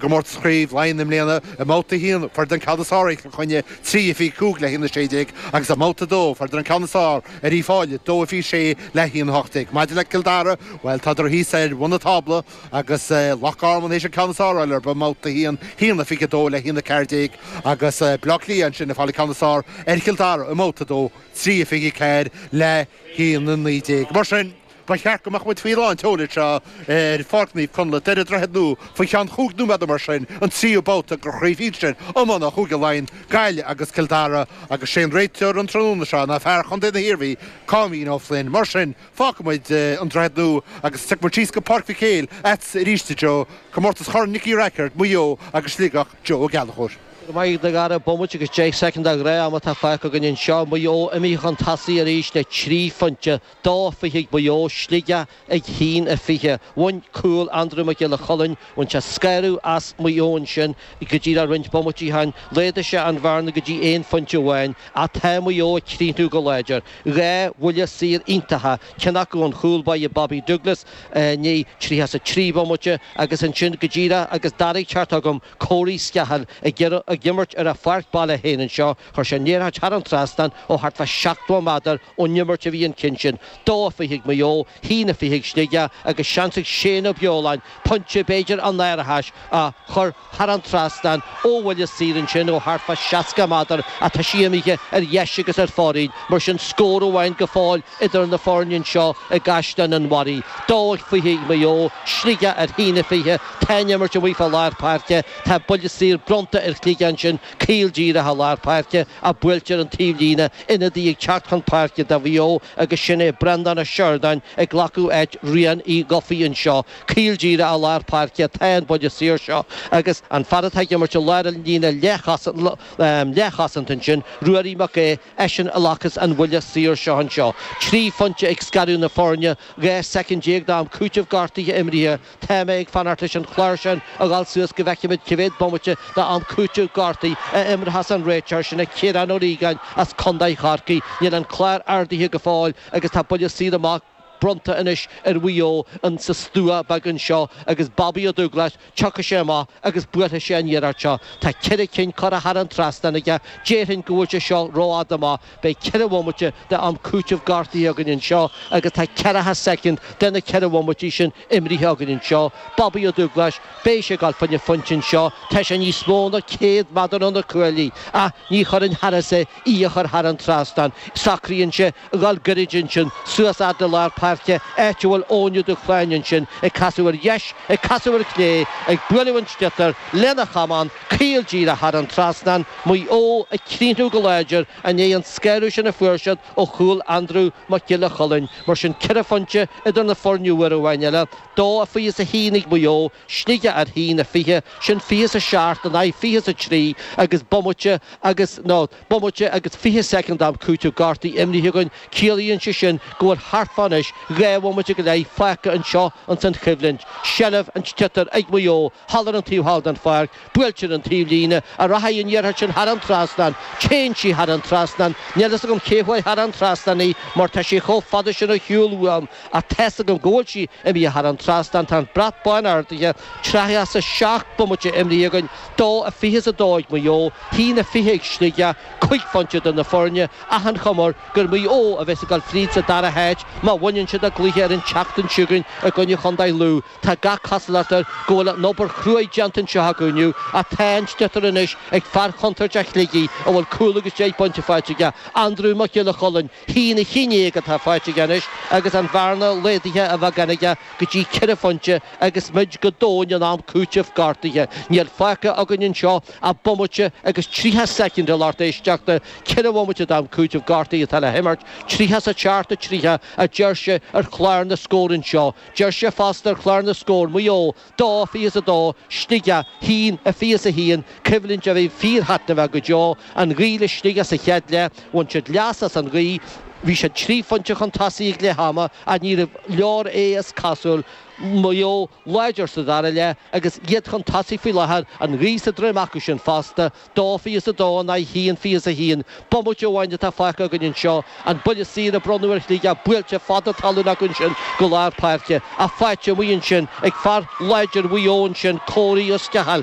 gcomórtas Chraobh Laighean i mbliana, i mbabhta a haon fuaireadar an ceann is fearr ar Chill Chainnigh, trí fiche cúig le haon a sé déag, agus i mbabhta a dó fuaireadar an ceann is fearr ar Uíbh Fhailí, dó fiche sé le haon a hocht déag. Maidir le Cill Dara, bhuel, tádar thíos ar bhun an tábla agus Loch Garman théis an ceann is fearr a fháil orthu i mbabhta a haon, haon a fiche dó le haon a ceathair déag, agus Baile Átha Cliath ansin ag fáil an ceann is fearr ar Chill Dara i mbabhta a dó, trí fiche ceathair le haon a naoi déag. Mar sin. Ba cheart go mbeadh muid faoi lán-tseoil anseo ar Pháirc Naomh Conlaith ar an Droichead Nua faoi cheann chúig nóiméad nó mar sin, an tríú babhta de chraobh shinsir iomána Chúige Laighean, Gaillimh agus Cill Dara agus sé an réiteoir an tráthnóna seo ná fear chontae na hIarmhí, Cáimín Ó Floinn. Mar sin, fágfaidh muid an Droichead Nua agus tiocfaimid síos go Páirc Mhic Éil ar ais arís i dtreo comórtas Chorn Nicky Rackard, Maigh Eo agus Sligeach, Joe Ó Gallchóir. Go maith a Dhara, bomaite agus deich soicind de ghnáth-am atá fágtha againn anseo, Maigh Eo imithe chun tosaigh arís le trí phointe, Dó a fiche ag Maigh Eo, Sligeach ar a haon a fiche. Bhain cúl Andrew Mac Giolla Chulainn, bhain sé scanradh as Maigh Eo ansin go díreach roinnt bomaití ó shin, laghdaigh sé an bhearna go dtí aon phointe amháin, ach tá Maigh Eo ag críochnú go láidir. Dhá bhuille saor iontacha, ceann acu ón chúl báire Bobby Douglas i ndiaidh 33 bomaite agus ansin go díreach agus Dara ag teacht chugam, Corey Scahill ag imirt ar a pháirc baile féin anseo, Chuir sé an iarracht thar an trasnán ó thart fá sheachtó méadar ón imirt a bhí an ceann sin. Dó a fiche ag Maigh Eo, haon a fiche ag Sligeach, agus seans ag Shane Ó Beoláin pointe, b'fhéidir, an árachais a chur thar an trasnán ó bhuille saor ansin ó thart fá seasca méadar, ach tá sí imithe ar dheis agus ar fóraoil, mar sin scór amháin go fóill idir na foirne anseo i gCaisleán an Bharraigh. Dó a fiche ag Maigh Eo, Sligeach ar a haon a fiche, tá an imirt amuigh fá lár páirce, tá buille saor bronnta ar Shligeach ansin, Caol díreach i lár páirce a buailtear an taobhlíne ionadaí ag teacht chun páirce do Mhaigh Eo agus sin é Breandán Ó Sioradáin ag glacadh áit Riain Uí Dhufaigh anseo. Caol díreach i lár páirce atá an buille saor seo agus an fear atá ag imirt i lár an líne leathchosanta ansin, Ruairí Mac Aodha, eisean a ghlacas an buille saor seo anseo. Trí phointe ag scaradh na foirne, 12 soicind d'am cúitimh gortuithe imrithe, Tá mé ag fanacht leis an chlár sin a dhul suas go bhfeicfimid cé mhéad bomaite d'am cúitimh gortuithe a imreochas an réiteoir sin é Ciarán Ó Riagáin as Contae Chorcaí. Níl an clár ardaithe go fóill agus tá buille saor amach bronnta anois ar Mhaigh Eo in sa stua beag anseo agus Bobby Ó Dúglas tiocfaidh sé amach agus buailfidh sé an iarracht seo. Tá ceithre cinn curtha thar an trasnán aige. Déarfainn go bhfuil sé seo rófhada amach. Beidh ceithre bhomaite de am cúitimh gortaithe againn anseo agus tá ceathracha soicind de na ceithre bhomaití sin imrithe againn anseo. Bobaí Ó Dúgláis, beidh sé ag goil faoina phointe anseo. Tá sé níos mó ná céad méadar ó na cuaillí, ach ní chuirfinn thairis é, í a chur thar an trasnán. Socraíonn sé a dhul goirid ansin, suas fhad le lár páirce, áit a bhfuil Eoin Ó Dúshláine ansin, ag casadh ar dheis, ag casadh ar chlé, ag bualadh an sliotar lena chamán, Caol díreach thar an trasnán, Maigh Eo, ag críochnú go láidir, i ndiaidh an scanradh sin a fuair siad ó chúl Aindriú Mac Giolla Chulainn? Mar sin, ceithre phointe idir na foirne uair amháin eile, dó a fiche is a haon ag Maigh Eo, Sligeach ar haon a fiche, sin fiche is a seacht in aghaidh fiche is a trí agus bomaite agus, nó. Bomaite agus fiche soicind am cúitimh gortaithe imithe againn, ciallaíonn sé sin go bhfuil thart fá anois dhá bhomaite go leith fágtha anseo ins an choimhlint, seilbh an tsliotair ag Maigh Eo thall ar an taobh thall den pháirc, buailte ar an taobhlíne, an rachaidh an iarracht sin thar an trasnán, téann sí thar an trasnán, níl fhios agam cé chuir thar an trasnán í mar tá sí chomh fada sin ar shiúl uaim ach tá's agam go bhfuil sí imithe thar an trasnán, tá an bhratach bhán ardaithe, tríocha is a seacht bomaite imrithe againn. Dó a fiche is a dó ag Maigh Eo, haon a fiche ag Sligeach, cúig phointe idir na foirne, ach an chuma air gur Maigh Eo a bheas ag dul fríd sa dara háit má bhaineann siad a gcluiche ar an tseachtain seo chugainn i gcoinne chontae Lú. Tá gach cosúlacht air go bhfuil an obair chruaidh déanta anseo acu inniu, ach tá an sliotar anois ag fear contúirteach Shligigh a bhfuil cúl agus deich bpointe faighte aige, Andrew Mac Giolla Chulainn, haon a haon déag atá faighte aige anois agus an bhearna laghdaithe ar ais againn aige. go dtí ceithre phointe agus muid go domhain in am cúitimh gortaithe. Níl fágtha againn anseo ach bomaite agus tríocha soicind de, a lucht éisteachta. Ceithre bhomaite d'am cúitimh gortaithe atá le himirt, tríocha a seacht tríocha, a deir sé ar chlár na scór anseo. Deir sé fosta ar chlár na scór Maigh Eo, dó fiche's a dó, Sligeach, haon a fiche's a haon, coimhlint a bhí fíorthaitneamhach go deo. An ghaoth le Sligeach sa chéad leath, bhain siad leas as an ghaoth, bhí siad trí phointe chun tosaigh ag leath ama ach ní raibh leor é is cosúil Mhaigh Eo láidir sa dara leath agus iad chun tosaigh faoi láthair, an ghaoth sa droim acu sin fosta. Dó fiche is a dó in aghaidh haon fiche is a haon. Bomaite amháin atá fágtha againn anseo, an buille saor a bronnadh ar Shligeach, buailte fada talún acu ansin go lár páirce, ach faighte amuigh ansin ag fear láidir Mhaigh Eo ansin, Corey Ó Sceacháil.